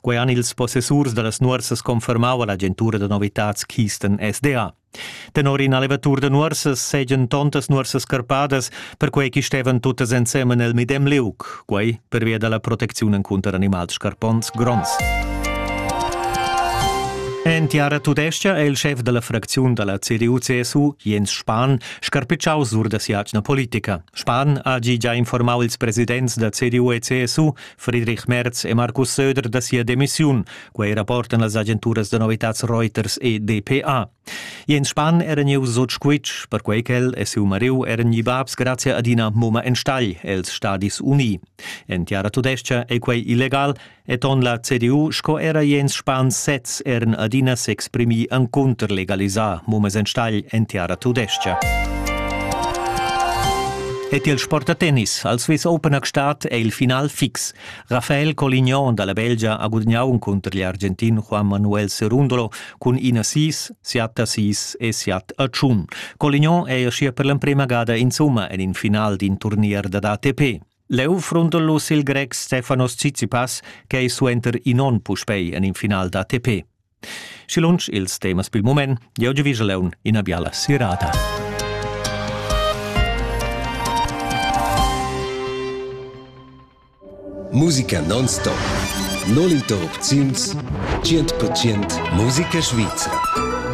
Quei han ils possessurs dallas nuorsas confermau all'agentura da novitads Kisten SDA. Tenor in allevatur da nuorsas seigien tontas nuorsas carpadas, perquei che stevan tuttas ensemen el medem liug, quei pervia dalla protecziun encunter animals scarpons gronds. En tiara tudescha è il schef della fracziun della CDU-CSU, Jens Spahn, scarpicciau sur da si'atgna politica. Spahn ha gia informau ils presidents da CDU e CSU Friedrich Merz e Markus Söder da sia demissiun, quei rapportan las agenturas da novitads Reuters e DPA. Jens Spann era gniu sut squitsch, perquei ch'el e siu mariu eran gli babs grazie ad ina mumma enstagl els Stadis Uni. En tiara tudescha ei quei illegal e ton la CDU sco era Jens Spann sez eran adina s'exprimi encunter legalisar mummas enstagl en tiara tudescha. ed il sportatennis al Swiss Open a Gstaad è il final fix. Rafael Colignon da la Belgia ha gudagnà cunter l'Argentin Juan Manuel Cerundolo cun ina sis, siat a sis e siat a tschun. Colignon è uschia per l'emprima gada insumma en in final d'in turnier dad ATP. Leu frundellos il grec Stefanos Tsitsipas, che ei suenter in onn puspei en in final d'ATP. Schi lunsch ils temas pil mument, jeu giu vigeleun ina biala sirata. Musica non-stop. Null interrupziuns, 100% musica svizra.